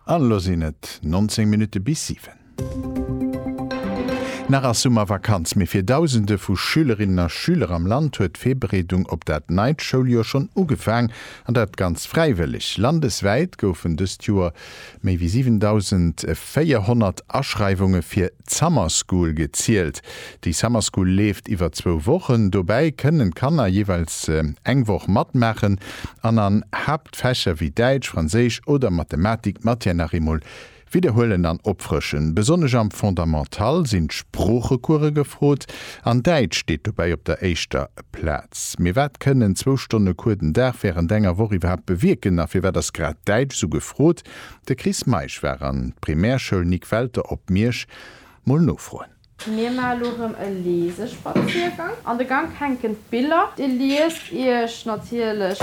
An elo sinn et 19 Minutte bis 7. Nach ass Summervakanz, mee fir Dausende vu Schülerinnen a Schüler am Land huet d'Virbereedung op dat neit Schouljoer schonn ugefaang, an dat ganz fräiwëlleg. Landeswäit goufen dëst Joer méi wéi 7.400 Aschreiwunge fir d'Summer School gezielt. Déi Summer School leeft iwwer zwou Wochen. Dobäi kënnen d'Kanner jeeweils eng Woch matmaachen an an D'Fächer wéi Däitsch, Franséisch oder Mathematik d'Matière nach eemol widderhuelen an opfrëschen. Besonnesch am Fondamental sinn d'Sproochecourse gefrot an Däitsch steet dobäi op der éischter Plaz. Mee wat kënnen zwou Stonne Cours den Dag wärend enger Woch iwwerhaapt bewierken a firwat ass grad Däitsch esou gefrot? De Chris Meisch war an d'Primärschoul Nic. Welter op Miersch mol nofroen. Mir maan lo rem e Leesespaziergang. An de Gank hänken d'Biller. Dir liest iech natierlech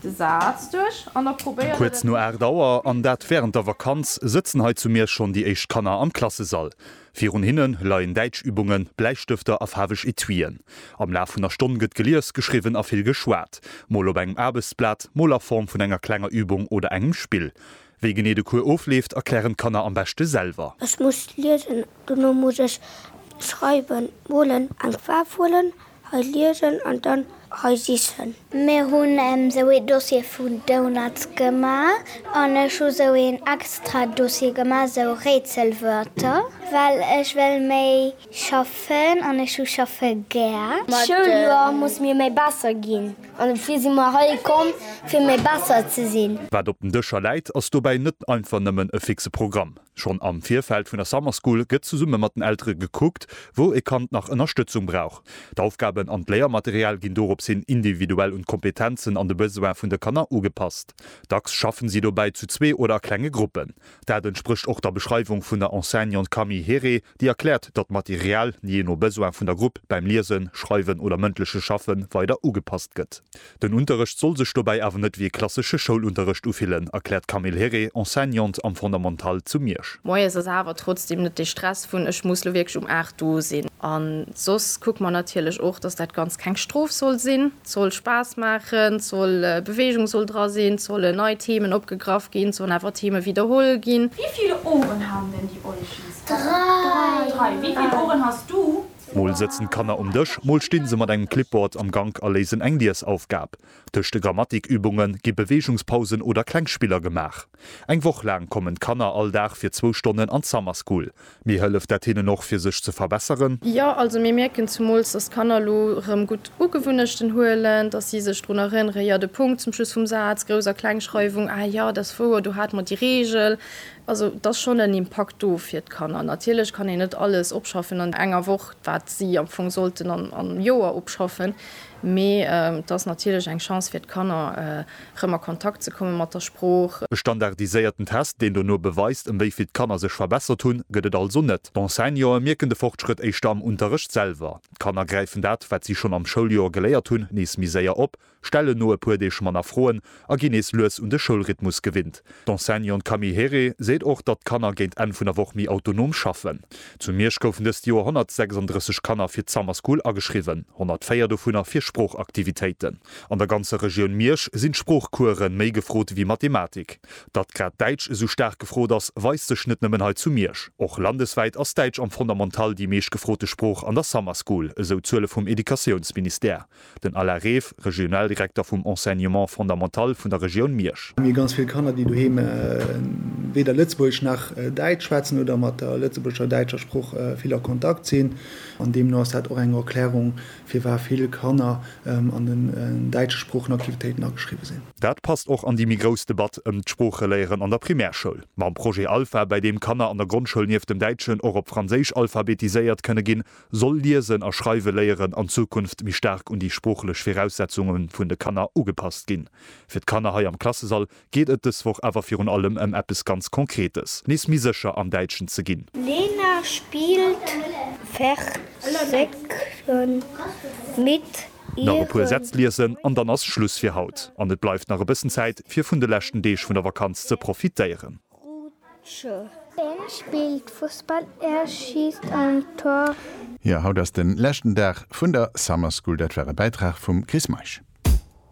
de Saz duerch an da probéiert et. Kuerz no 8 Auer, an dat wärend der Vakanz, sëtzen hei zu Miersch schonn déi éischt Kanner am Klassesall. Virun hinne leien Däitschübungen, Bläistëfter a faarweg Etuien. Am Laf vun der Stonn gëtt gelies, geschriwwen a vill geschwat, mol op engem Aarbechtsblat, mol a Form vun enger klenger Übung oder engem Spill. Wéi genee de Cours ofleeft, erklären d'Kanner am beschte selwer. Ech muss liesen, dono muss ech schreiwen, molen, eng Faarf huelen, hei liesen an dann hei sichen. Mir hunn esou ee Dossier vu Donuts gemaach an ech hu sou een extra Dossier gemaach, sou Rätselwörter, well ech wéll méi Schaffen an ech hu schaffe gär. D'Schouljoer muss mir méi besser ginn an dofir si mer hei komm fir méi besser ze sinn. Wat op den Dëscher läit, ass dobäi net einfach nëmmen e fixe Programm. Schonn am Virfeld vun der Summer School gëtt zesumme mat den Eltere gekuckt, wou e Kand nach Ënnerstëtzung brauch. D'Aufgaben an d'Léiermaterial ginn dorops hin individuell un d'Kompetenzen an de Besoin vun de Kanner ugepasst. Dacks schaffen si dobäi zu zwee oder a klenge Gruppen. Dat entsprécht och der Beschreiwung vun der Enseignante Camille Herré. Déi erkläert, datt d'Material, jee no Besoin vun der Grupp, bäim Liesen, Schreiwen oder mëndleche Schaffe weider ugepasst gëtt. Den Unterrecht soll sech dobäi awer net wéi e klassesche Schoulunterrecht ufillen, erkläert d'Camille Herré, Enseignante am Fondamental zu Miersch. Moies ass awer trotzdeem net dee Stress vun ech muss lo wierklech um 8 do sinn. An soss kucke mer natierlech och, datt dat Ganzt keng Strof soll sinn. Et soll Spaass maachen, et soll Beweegung soll dra sinn, et sollen nei Themen opgegraff ginn, et sollen awer Theme widderholl ginn. Wéi vill Ohren haben denn die Olchis? Dräi! Wéi vill Ohren hast du? Mol sëtzen d'Kanner um Dësch, mol stinn se mat engem Clipboard am Gank a léisen eng Liesaufgab. Tëscht de Grammatikübunge gi Beweegungspausen oder kleng Spiller gemaach. Eng Woch laang kommen d'Kanner all Dag fir zwou Stonnen an d'Summer School. Mee hëlleft dat hinnen och, fir sech ze verbesseren? Jo, also mir mierken zemools, dass d'Kanner elo erëm gutt Ugewunnechten huelen, dass si sech drun erënneren, jo, de Punkt zum Schluss vum Saz, Grouss a Klengschreiwung, ah jo, dat ass wouer, do hate mer déi Reegel. Also et ass schonn en Impakt do fir d'Kanner. Natierlech kann een net alles opschaffen an enger Woch, wat si am Fong sollten an am Joer opschaffen, mee et ass natierlech eng Chance fir d'Kanner, erëm a Kontakt ze komme mat der Sprooch. E standardiséierten Test, deen dono beweist, ëm wéi vill d'Kanner sech verbessert hunn, gëtt et also net. D'Enseignantë mierken de Fortschrëtt éischter am Unterrecht selwer. D'Kanner gräifen dat, wat si schonn am Schouljoer geléiert hunn, nees méi séier op stellen no e puer Deeg manner Froen a ginn nees lues un de Schoulrhythmus gewinnt. D'Enseignante Camille Heré seet och, datt d'Kanner géint Enn vun der Woch méi autonom schaffen. Zu Miersch goufen dëst Joer 136 Kanner fir d'Summer School ageschriwwen, 104 dovunner fir Sproochaktivitéiten. An der ganzer Regioun Miersch sinn d'Sproochcoursen méi gefrot wéi Mathematik. Datt grad Däitsch esou staark gefrot ass, weist sech net nëmmen hei zu Miersch. Och landeswäit ass Däitsch am Fondamental déi meescht gefrote Sprooch an der Summer School, esou d'Zuele vum Educatiounsministère. Den Alain Reef, Regionaldirekter vum Enseignement fondamental vun der Regioun Miersch. Mir hu ganz vill Kanner, déi doheem weder Lëtzebuergesch nach Däitsch schwätzen oder mat der lëtzebuergescher a däitscher Sprooch vill a Kontakt sinn. An deemno ass dat och eng Erklärung, firwat vill Kanner an den däitsche Sproochenaktivitéiten ageschriwwen sinn. Dat passt och an déi méi grouss Debatt ëm d'Sproocheléieren an der Primärschoul. Mam Projet Alpha, bäi deem Kanner an der Grondschoul nieft dem Däitschen och op Franséisch alphabetiséiert kënne ginn, soll liesen a schreiwe léieren an Zukunft méi staark un déi sproochlech Viraussetzunge vun de Kanner ugepasst ginn. Fir d'Kanner hei am Klassesall geet et dës Woch awer virun allem ëm eppes ganz Konkretes, nees méi sécher am Däitschen ze ginn. Lena spilt Versekchen mit ihren. Nach e puer Sätz liesen an dann ass Schluss fir haut an et bleift nach e bëssen Zäit fir vun de leschten Deeg vun der Vakanz ze profitéieren. Rutsche. Een spillt Fussball, en schiisst en Tor. Jo, haut ass den leschten Dag vun der Summer School. Dat war e Bäitrag vum Chris Meisch.